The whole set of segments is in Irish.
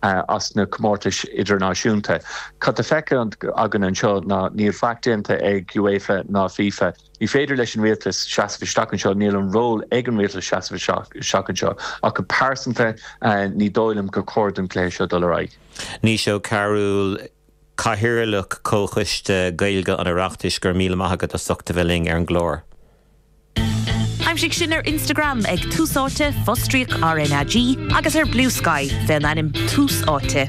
as na comórtais idirnáisiúnta. Cad atá feicthe againn anseo ná níl faic déanta ag UEFA ná FIFA. Ní féidir leis an rialtas seasamh isteach anseo, níl an ról ag an rialtas seasamh isteach anseo. Ach go pearsanta ní dóigh liom gur chóir don gcluiche seo dul ar aghaidh. Naoise Ó Cearúil, Cathaoirleach Comhchoiste Gaeilge an Oireachtais, Go raibh míle maith agat as ucht a bheith linn ar an gclár. Aimsigh sinn ar Instagram ag Tús Áite, fostríoc RnaG, agus ar Bluesky fén ainm Tús Áite.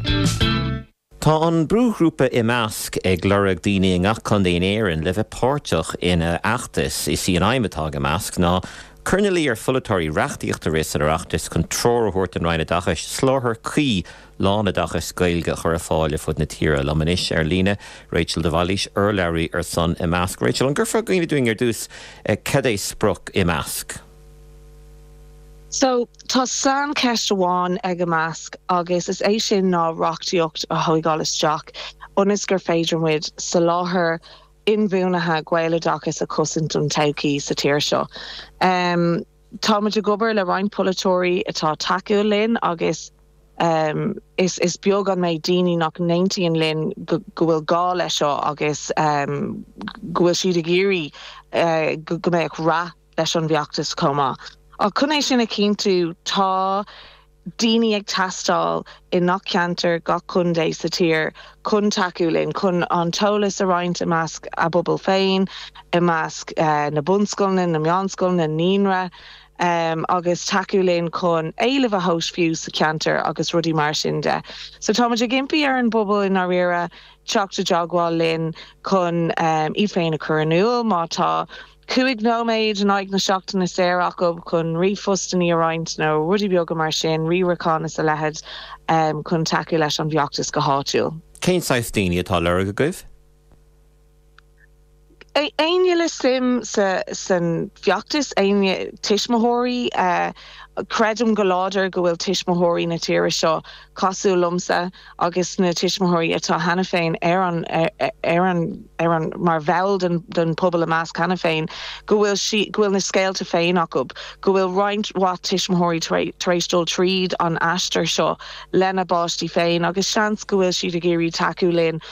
Tá an brúghrúpa Imeasc ag lorg daoine i ngach contae in Éirinn le bheith páirteach ina fheachtas. Is í an aidhm atá ag Imeasc ná cur ina luí ar pholaiteoirí reachtaíocht a rith san Oireachtas chun treoir a thabhairt don Roinn Oideachais soláthar cuí lánoideachas Gaeilge a chur ar fáil ar fud na tíre. Liom anois ar líne, Rachel de Bhailís, urlabhraí ar son Imeasc. Rachel, an gcuirfeá i gcuimhne dúinn ar dtús cad é sprioc Imeasc? So, tá saincheist amháin ag Imeasc agus is é sin ná reachtaíocht a thóigeáil isteach ionas gur féidir muid soláthar inbhuanaithe Gaeloideachais a chosaint don todhchaí sa tír seo. Tá muid ag obair le roinnt polaiteoirí atá tacúil linn agus Is beag an méid daoine nach n-aontaíonn linn go bhfuil gá leis seo agus go bhfuil siad ag iarraidh go mbeadh rath leis an bhfeachtas chomh maith. Ach chun é sin a chinntiú, tá daoine ag teastáil i ngach ceantar, gach contae sa tír chun tacú linn, chun an t-eolas a roinnt i measc a bpobal féin, i measc na bunscoileanna, na meánscoileanna, naíonra. em agus tacú linn chun éileamh a thomhas fiú sa cheantar agus rudaí mar sin de. So tá muid ag impí ar an bpobal i ndáiríre teacht i dteagmháil linn chun iad féin a chur in iúl, má tá cúig nóiméad in aghaidh na seachtaine saor acu chun ríomhphostannaí a roinnt nó rudaí beaga mar sin, riarachán is a leithid, chun tacú leis an bhfeachtas go háitiúil. Cén saghas daoine atá lorg agaibh? Éinne le suim san feachtas, éinne, tuismitheoirí, creidim go láidir go bhfuil tuismitheoirí na tíre seo cosúil liomsa agus na tuismitheoirí atá cheana féin ar an, ar an, ar an, mar bhall den, den pobal Imeasc cheana féin, go bhfuil sí, go bhfuil na scéalta féin acu, go bhfuil roinnt mhaith tuismitheoirí tar éis, tar éis dul tríd an aistear seo lena bpáistí féin agus seans go bhfuil siad ag iarraidh tacú linn,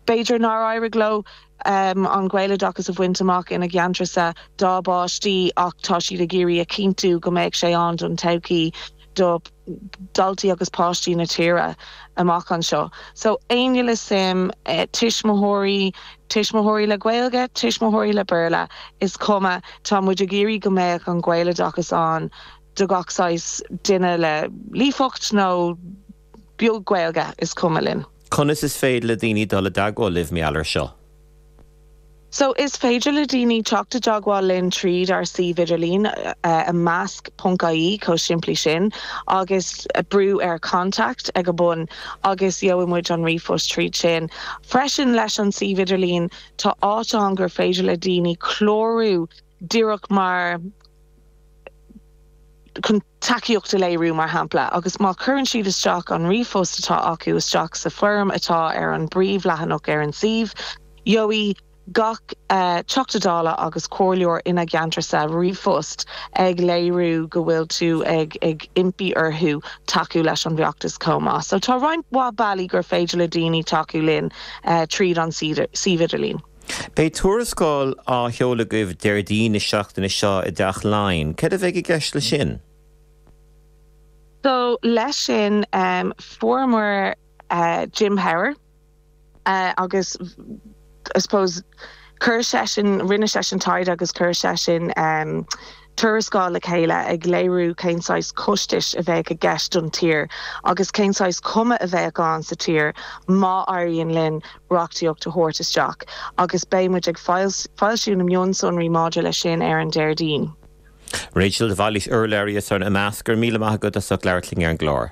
b'fhéidir nár éirigh leo an Gaeloideachas a bhaint amach ina gceantracha dá bpáistí ach tá siad ag iarraidh a chinntiú go mbeadh sé ann don todhchaí do dhaltaí agus páistí na tíre amach anseo. So, éinne le suim, tuismitheoirí, tuismitheoirí le Gaeilge, tuismitheoirí le Béarla, is cuma, tá muid ag iarraidh go mbeadh an Gaeloideachas ann do gach saghas duine le líofacht nó. beag Gaeilge is cuma linn. Conas is féidir le daoine dul i dteagmháil libh, maidir leis seo? So, is féidir le daoine teacht i dteagmháil linn tríd ár suíomh idirlín, imeasc ponc IE, chomh simplí sin, agus brú ar Contact ag an bun, agus gheobhaidh muid an ríomhphost tríd sin. Freisin, leis an suíomh idirlín, tá áit ann gur féidir le daoine clárú díreach mar chun. tacaíocht a léiriú, mar shampla, agus má chuireann siad isteach an ríomhphost atá acu isteach sa bhfoirm atá ar an bpríomhleathanach ar an suíomh, gheobhaidh gach Teachta Dála agus comhairleoir ina gceantarsa ríomhphost ag léiriú go bhfuil tú ag impí orthu tacú leis an bhfeachtas chomh maith. So tá roinnt mhaith bealaí gur féidir le daoine tacú linn tríd an suíomh idirlín. Beidh tuarascáil á sheoladh agaibh Déardaoin na seachtaine seo i dTeach Laighean. Cad a bheidh i gceist leis sin? So leis sin fuaireamar Jim Power agus I suppose chuir seisean, rinne seisean taighde agus chuir seisean, tuarascáil le chéile ag léiriú cén saghas costais a bheadh i gceist don tír agus cén saghas cuma a bheadh ann sa tír má éiríonn linn reachtaíocht a thabhairt isteach agus beidh muid ag foilsiú na mionsonraí maidir leis sin ar an Déardaoin. Rachel, de Bhailís, urlabhraí ar son Imeasc. Go raibh míle maith agat as ucht labhairt linn ar an gclár.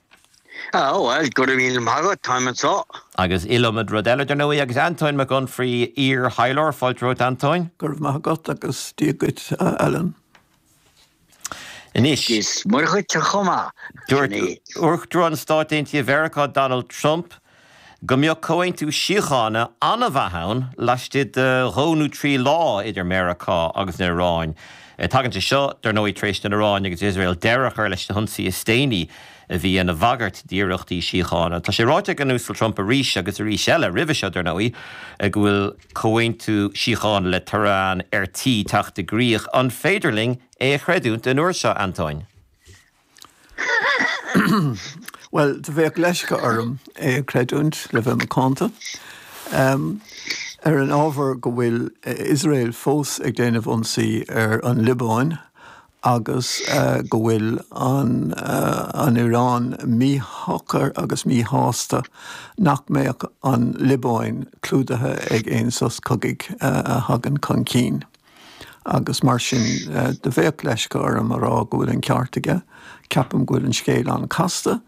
Ah, bhuel, go raibh míle maith agat, táim anseo. Agus iliomad rud eile, dar ndóigh, agus Antóin Mac Unfraidh, iar-thaidhleoir, fáilte romhat, Antóin. Go raibh maith agat, agus Dia duit, a Alan. Anois. Is Muire dhuit chomh maith, Sinéad. Dúirt Uachtarán Stáit Aontaithe Mheiriceá Donald Trump go mbeadh comhaontú síochána an-mhaith ann laistigh de dhó nó trí lá idir Meiriceá agus an Iráin. Tagann sé seo, dar ndóigh, tar éis don Iráin agus Iosrael deireadh a chur leis na hionsaí is déanaí a bhí ina bhagairt d'iarrachtaí síochána. Tá sé ráite ag an Uasal Trump arís agus arís eile roimhe seo, dar ndóigh, go bhfuil comhaontú síochána le Tehran ar tí teacht i gcrích. An féidir linn é a chreidiúint an uair seo, Antóin? Bhuel, do bheadh leisce orm é a chreidiúint, le bheith macánta. Ar an ábhar go bhfuil Iosrael fós ag déanamh ionsaí ar an Liobáin agus go bhfuil an Iráin míshocair agus míshásta nach mbeadh an Liobáin clúdaithe ag aon sos cogaidh a thagann chun cinn. agus mar sin do bheadh leisce orm a rá go bhfuil an ceart aige. Ceapaim go bhfuil an scéal an-casta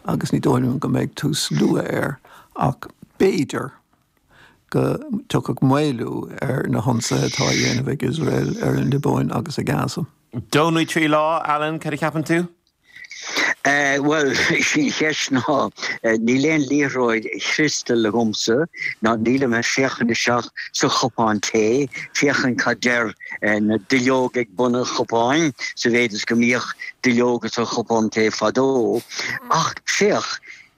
agus ní dóigh liom go mbeidh tús luath air, ach b'fhéidir go dtiocfadh maolú ar na hionsaithe atá á dhéanamh ag Iosrael ar an Liobáin agus ar Gaza. Dó nó trí lá, Alan, cad a cheapann tú? Bhuel, sin í an cheist, níl aon liathróid chriostail agamsa, ná nílim ag féachaint isteach sa chupán tae ag féachaint cad deir na duilleoga ag bun an chupáin, sa mhéid is go mbíodh duilleoga sa chupán tae fadó. Ach féach,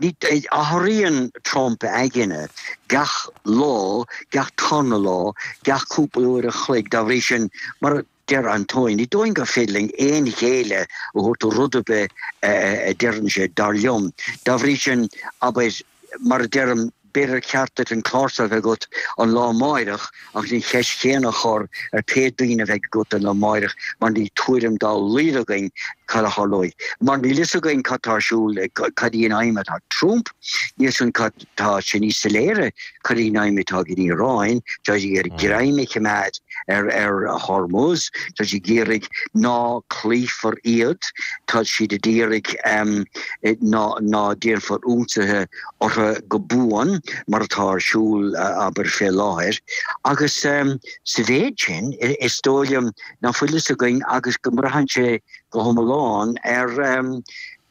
athraíonn Trump a aigne gach lá, gach tarna lá, gach cúpla uair a chloig, dá bhrí sin, mar a. Deir Antóin, ní dóigh liom gur féidir linn aon ghéilleadh a thabhairt do rud ar bith a deireann sé, dar liom. Dá bhrí sin, abair, mar a deirim, b'fhéidir gur cheart duit an clársa a bheith agat an lá amáireach agus an cheist chéanna a chur ar pé duine a bheidh agat an lá amáireach mar níl tuairim dá laghad againn cad a tharlóidh mar níl fhios againn cad tá ar siúl, cad í an aidhm atá ag Trump, níl fhios againn cad. Tá sé níos soiléire cad iad na haidhmeanna atá ag an Iaráin. Tá siad ag iarraidh greim a choimeád ar Hormuz. Tá siad ag iarraidh ná cloífear iad. Tá siad ag iarraidh ná déanfar ionsaithe orthu go buan, mar atá ar siúl, abair, fé láthair. Agus sa mhéid sin, is dóigh liom ná fuil fhios againn agus go mbraitheann sé go hiomlán ar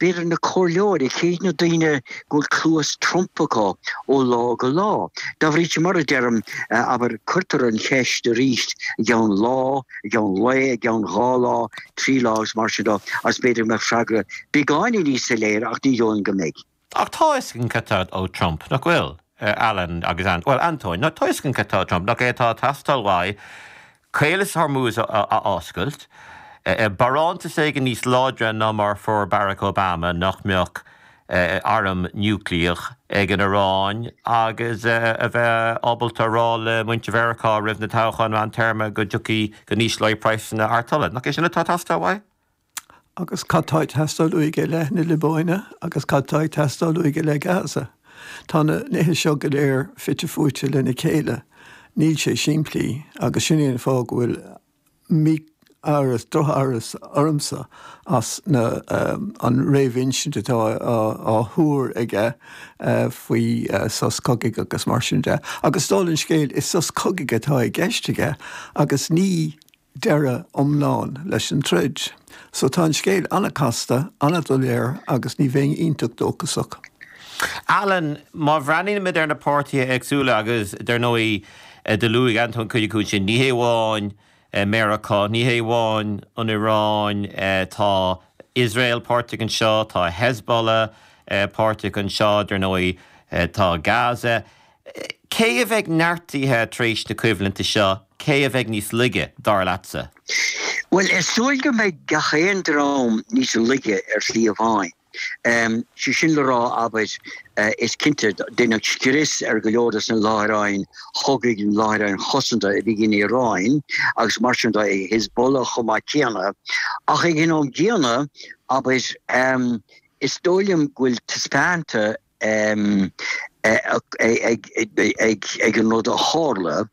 B'fhéidir na comhairleoirí i gcéad, na daoine go bhfuil cluas Trump acu ó lá go lá. Dá bhrí sin, mar a deirim, abair, cuirtear an cheist arís i gceann lá, i gceann lae, i gceann dhá lá, trí lá agus mar sin de, agus b'fhéidir go mbeadh freagra beagáinín níos soiléire, ach ní dóigh liom go mbeidh. Ach tá exit ag teastáil ó Trump, nach bhfuil? Alan agus Antóin, tá exit ag teastáil ó Trump nach é atá ag teastáil uaidh Caolas Hormuz a oscailt. Barántas éigin níos láidre ná mar a fuair Barack Obama nach mbeadh airm niúclíach ag an Iaráin agus a bheith ábalta a rá le muintir Mheiriceá roimh na toghcháin meántéarma go dtiocfaidh, go n-ísleoidh praghsanna artola. Nach é sin atá ag teastáil uaidh? Agus cad tá ag teastáil uaidh i leith na Liobáine agus cad tá ag teastáil uaidh i leith Gaza? Tá na nithe seo go léir fite fuaite lena chéile, níl sé simplí, agus sin é an fáth go bhfuil mí-amhras, drochamhras ormsa as na, an réamhinsint atá á thuar aige faoi sos cogaidh agus mar sin de. Agus dála an scéil, is sos cogaidh atá i gceist aige agus ní deireadh iomlán leis an troid. So tá an scéal an-casta, an-doiléir agus ní bheinn iontach dóchasach. Alan, má bhreathnaímid ar na páirtithe éagsúla agus dar ndóigh do luaigh Antóin cuid acu sin, ní hamháin Meiriceá, ní hamháin an Iaráin, tá Iosrael páirteach anseo, tá Hezbollah páirteach anseo, dar ndóigh tá Gaza. Cé a bheidh neartaithe tar éis na coimhlinte seo, cé a bheidh níos laige, dar leatsa? Bhuel, is dóigh go mbeidh gach aon dream níos laige ar shlí amháin. Sé sin le rá, abair, is cinnte, deineadh scrios ar go leor de na láithreáin chogaidh, na láithreáin chosanta a bhí ag an Iaráin agus mar sin de, ag Hezbollah chomh maith céanna. Ach ag an am céanna, abair, is dóigh liom go bhfuil taispeánta, ag an rud a tharla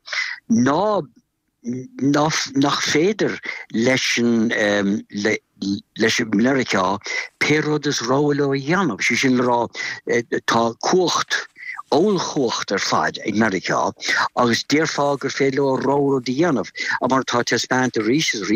ná nach féidir le Meiriceá pé rud is rogha leo a dhéanamh, sé sin le rá tá cumhacht, ollchumhacht ar fad ag Meiriceá agus déarfá gur féidir leo rogha rud a dhéanamh, mar atá taispeánta arís is arís.